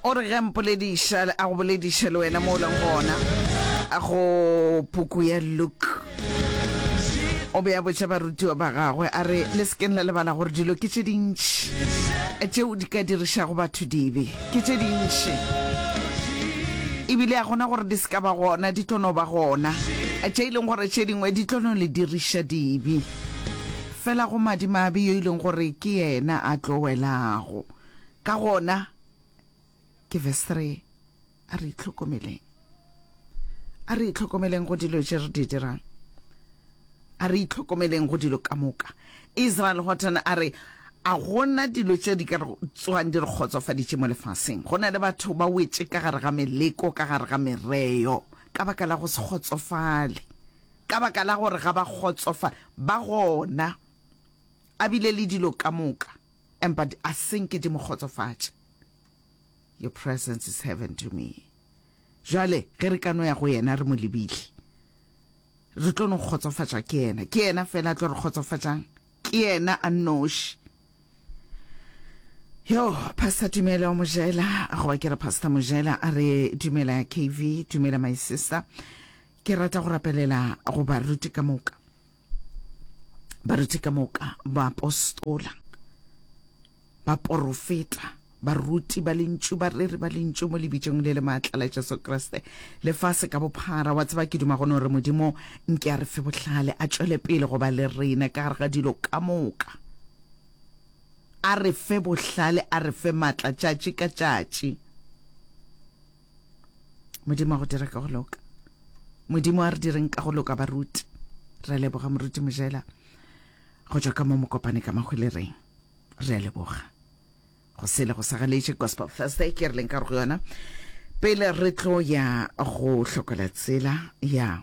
O re ge a mpolediša, a go bolediše le wena mo o leng gona, a go puku ya Luke. O be a botša barutiwa ba gagwe, a re, Le sekeng la lebala gore dilo ke tše dintši tšeo di ka dirišago batho dibe. Ke tše dintši. Ebile a gona gore di se ka ba gona, di tlo no ba gona. Tše e leng gore tše dingwe di tlo no le diriša dibe. Fela go madimabe yo e leng gore ke yena a tlo welago. Ka gona, ke verse three, a re itlhokomeleng. A re itlhokomeleng go dilo tše re di dirang. A re itlhokomeleng go dilo ka moka. Israel Houghton a re, a gona dilo tše di ka tswang di re kgotsofaditše mo lefaseng. Go na le batho ba wetše ka gare ga meleko, ka gare ga mereo, ka baka la go se kgotsofale. Ka baka la gore ga ba kgotsofa, ba gona a bile le dilo ka moka, empa di a senke di mo kgotsofatše. Your presence is heaven to me. Jale, ge re ka no ya go yena re mo lebile, re tlo no kgotsofatša ke yena. Ke yena fela a tlo re kgotsofatšang, ke yena a nnoši. Yo, Pastor Tumelo Mojela, goba ke re Pastor Mojela, a re, Dumela KV, dumela my sister. Ke rata go rapelela go baruti ka moka, baruti ka moka, baapostola, baporofeta, baruti ba lentšu, bareri ba lentšu mo lebitsong le le maatla la Jesu Kriste, lefase ka bophara. Wa tseba, ke duma gone gore Modimo nke a re fe bohlale, a tšwele pele go ba le rena ka gare ga dilo ka moka, a re fe bohlale, a re fe maatla tšatši ka tšatši. modimo a go dira ka go loka modimo a re direng ka go loka baruti re a leboga moruti mojela go tšwa ka mo mokopane ka magwelereng re a leboga go sele go sa galetše gospel thursday ke re leng ka go yona pele re tlo ya go hlokola tsela ya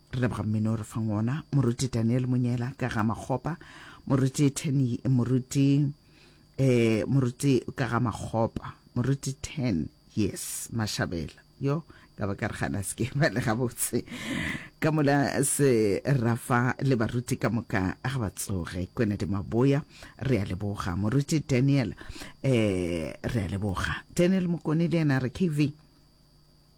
Re leboga mmino o re fang ona, moruti Daniel Monyela ka ga makgopa, moruti Ten, moruti eh moruti ka ga makgopa, moruti Ten, yes, Mashabela yo ka ba ka re gana se ke ba le gabotse ka mola se rafa le baruti ka moka ga ba tsoge kwena di maboya re a leboga moruti Daniel eh re a leboga Daniel Mokone le yena re KV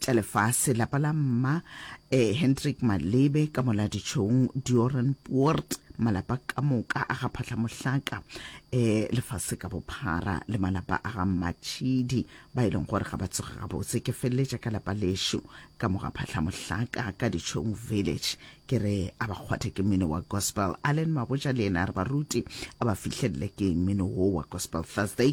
tša lefase lapa la mma eh, hendrik malebe ka moladitšhong dioran puort malapa ka moka a ga phatlhamohlaka um eh, lefase ka bophara le malapa a ga mmatšhidi ba e leng gore ga ba tsoge gabotse ke feleletša ka lapa lešo ka moga phatlhamohlaka ka ditšhong village ke re a ba kgwathe ke mmino wa gospel allen maboja le ena re baruti a ba fihlelele ke mmino wo wa gospel thursday